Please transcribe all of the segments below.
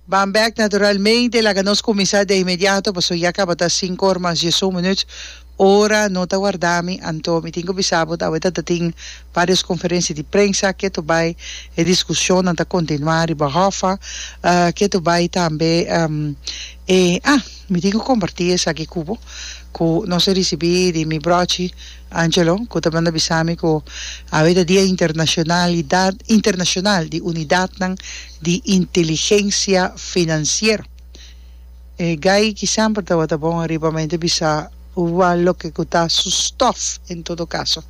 Bambek naturalmente laga nos kuminsá de inmediato pasobra ya kaba ta sinku or mas diesun minuut, ora no ta warda mi, anto mi tin ku bisa bo aweta ta tin varios konferensia di prensa, ketu bai e diskushonnan ta kontinuá riba hòffa, ketu bai tambe e, ah mi tin ku kompartí esaki ku bo ku nos a risibí di mi bròchi. Angelo, ku ta manda bisa mi ku awe ta Dia Internashonalidat Internashonal di Unidatnan di Inteligensia Finansiero. E gai ki semper tabata bon ariba mente bisa ua loke ku ta su stòf. En todo kaso,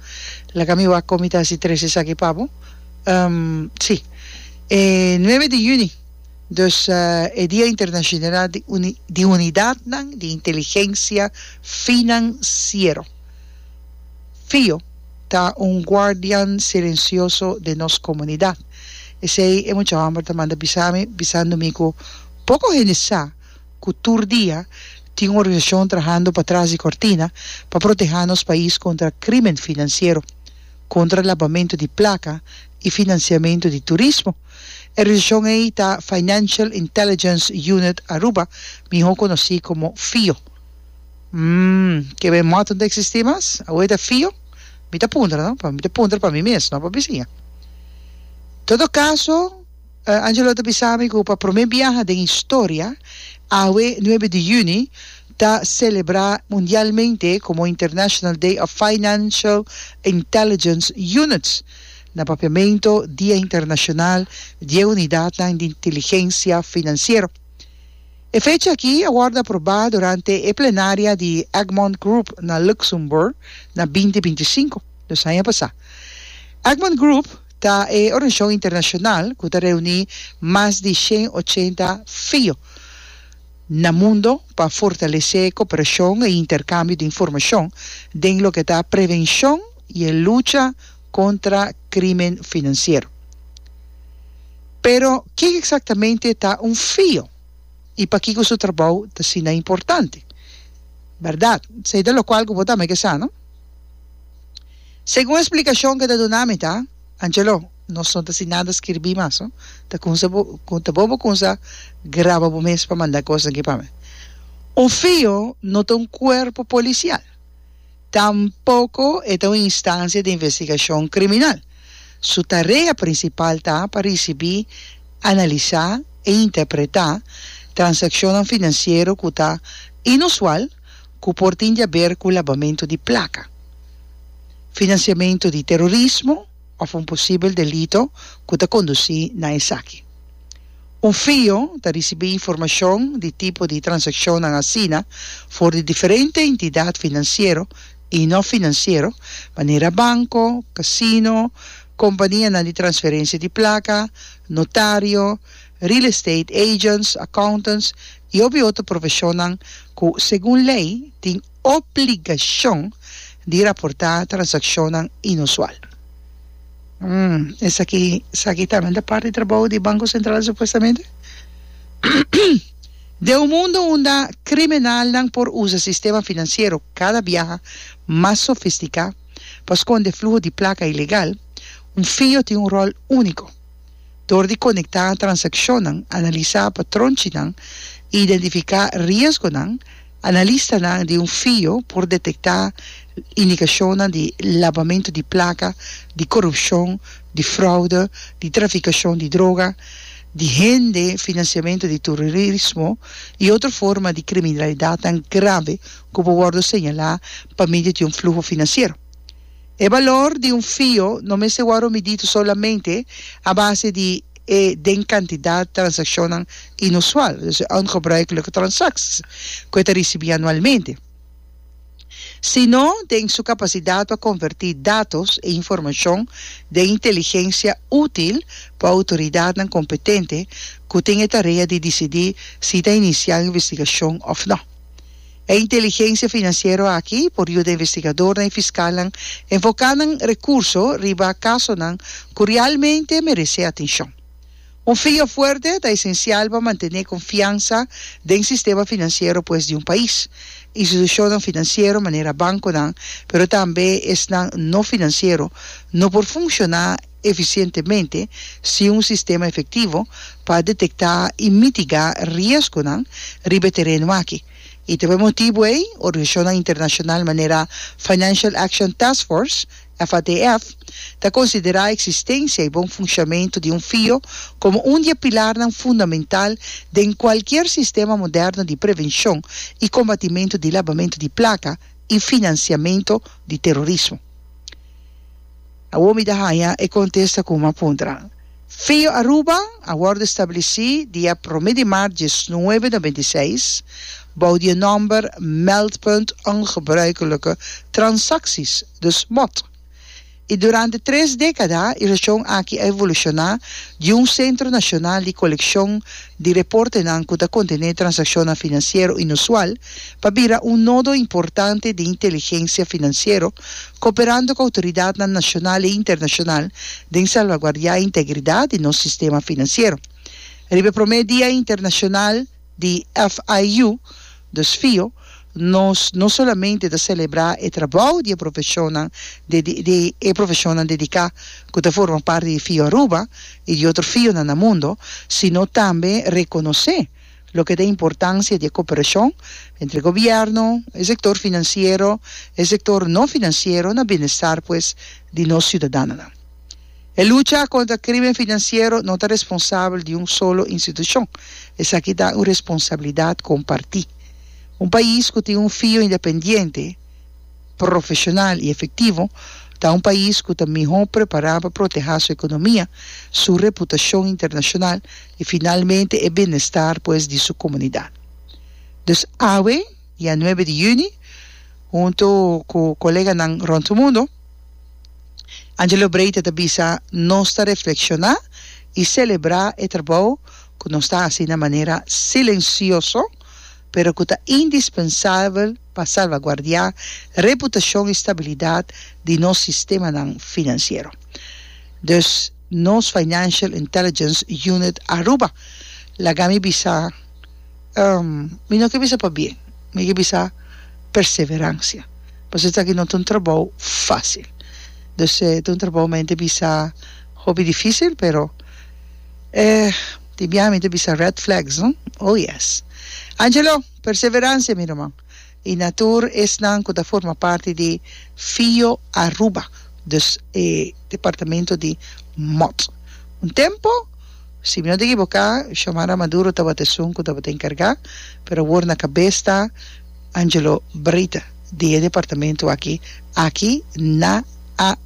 laga mi wak kon mi ta hasi tres esaki pa bo. Um, si. E nuebe di yüni, dus e Dia Internashonal di Unidatnan di Inteligensia Finansiero. Fio ta un guardian silencioso den nos comunidad. Esey e mucha homber ta manda bisa mi, bisando mi cu poco hende sa cu tur dia tin un organisacion trahando pa tras di cortina pa proteha nos pais contra crimen financiero, contra labamento di placa y financiamento di turismo. E organisacion ey ta Financial Intelligence Unit Aruba, miho conoci como Fio. Mmm, ke be mòt no ta eksistí mas? Awe ta fio? Mi ta puntra, no? Mi ta puntra pa mi mes, no pa bisiña. Todo kaso, Angelo ta bisa mi ku pa promé biaha den historia, awe nuebe di yüni ta selebrá mundialmente komo International Day of Financial Intelligence Units, na papiamentu Dia Internashonal di e Unidatnan di Inteligensia Finansiero. E fecha aki a wòrdu aprobá durante e plenaria di Egmont Group na Luxembourg na binti binti sinku, nos aña pasá. Egmont Group ta e organisashon internashonal ku ta reuní mas di shen ochenta fio na mundo pa fortalesé koperashon i interkambio di informashon den loke ta prevenshon i e lucha contra crimen financiero. Pero kico exactamente ta un fio y pakico su trabou ta asina importante? Berdad? Sey ta locual cu bo tambe ke sa, no? Segun explicacion ke ta duna mi ta, Angelo, nos no ta sin nada skirbi mas, no? Ta cunsa bo ta bo bo cunsa graba bo mes pa manda cosnan aki pa mi. Un fio no ta un cuerpo policial. Tampoco e ta un instancia di investigacion criminal. Su tarea principal ta pa ricibi, analisa e interpreta transaccionnan financiero cu ta inusual cu por tin di haber cu labamento di placa, financiamento di terrorismo of un posibel delito cu ta conduci na esaki. Un fio ta risibí informashon di tipo di transakshonnan asina for di diferente entidat finansiero i no-finansiero, manera banko, kasino, kompanianan di transferensia di plaka, notario, real estate agents, accountants i hopi otro profeshonnan ku segun lei tin. Obligashon di raportá transakshonnan inusual. Hum, esaki esaki tambe ta parti trabou di Banko Sentral supuestamente? Den un mundo unda kriminalnan por usa sistema finansiero kada biaha mas sofistiká pa skonde fluho di plaka ilegal, un fijo tin un ròl úniko. Dor di konektá transakshonnan, analisá patronchinan i identifiká riesgonan, analistanan di un fio por detektá indikashonnan di labamentu di plaka, di korupshon, di fraude, di trafikashon di droga, di hende, finansiamentu di tururismo i otro forma di kriminalidatnan grave ku por wòrdu señalá pa medio di un fluho finansiero. E balor di un fio no mester wòrdu midí solamente a base di e den kantidat transakshonnan inusual, dus e ongebruikelijke transakties, ku e ta risibí anualmente, sino den su kapasidat pa konvertí datos i informashon den inteligensia útil pa outoridatnan kompetente ku tin e tarea di disidí si ta inisiá un investigashon òf nò. E inteligencia financiero aki por yuda investigadornan y fiscalnan enfoca nan recurso riba casonan cu realmente merece atencion. Un fijo fuerte ta esencial pa mantene confianza den sistema financiero pues di un pais, institucionnan financiero manera banconan pero tambe esnan no financiero no por funciona, eficientemente sin un sistema efectivo pa detecta y mitiga riesgonan riba e tereno aki y ta por e motibo ey organisacionnan internacional manera Financial Action Task Force, FATF, ta considera existencia y bon funciamento di un fio como un di e pilarnan fundamental den cualkier sistema moderno di prevencion y combatimento di labamento di placa y financiamento di terrorismo. Awor mi ta haña e kontesta ku mi a puntra. Feo Aruba a wòrdu stabilisí dia promé di maart dies nuebe noventa i seis bou di e nòmber Meldpunt Ongebruikelijke Transacties, dus mot, i durante tres dékada e reshon aki a evolushoná di un sentro nashonal di kolekshon di reportenan ku ta kontené transakshonnan finansiero inusual, pa bira un nodo importante di inteligensia finansiero, kooperando ku outoridatnan nashonal i internashonal den salvaguardiá integridat di nos sistema finansiero. Riba e promé dia internashonal di FIU, dus fio, nos no solamente ta selebrá e trabou di e profeshonnan di e profeshonnan dediká ku ta forma parti di FIU Aruba i di otro FIUnan na mundo, sino tambe rekonosé, Loke ta e importancia di e cooperacion entre gobierno, e sector financiero, e sector no financiero na bienestar pues di nos ciudadanonan. E lucha contra crimen financiero no ta responsabel di un solo institucion, esaki ta un responsabilidad comparti. Un pais cu tin un fio independiente, profesional y efectivo ta un pais cu ta miho prepara pa proteha su economia, su reputacion internacional i finalmente e bienestar pues di su comunidad. Dus awe, dia nuebe di juni, hunto cu coleganan rond tur mundo, Angelo Breita ta bisa nos ta reflexiona i celebra e trabou cu nos ta haci na manera silencioso pero cu ta indispensabel pa salvaguardia reputacion i stabilidad di nos sistemanan financiero. Dus. Nos Financial Intelligence Unit Aruba laga mi bisa, ehm, mi no ke bisa pa bien, mi ke bisa perseverancia, pasobra esaki no ta un trabou fácil. Dus e ta un trabou men ta bisa hopi difícil, pero, eh, di biaha mi ta bisa red flags, no? Oh, yes. Angelo, perseverancia mi ruman. Y na tur esnan cu ta forma parti di Fio Aruba, dus e departamento di Mot. Un tempo, si mi no ta ekiboca, Xiomara Maduro tabata esun cu tabata encarga, pero awor na cabes ta Angelo Breda di e departamento aki, aki na Aruba.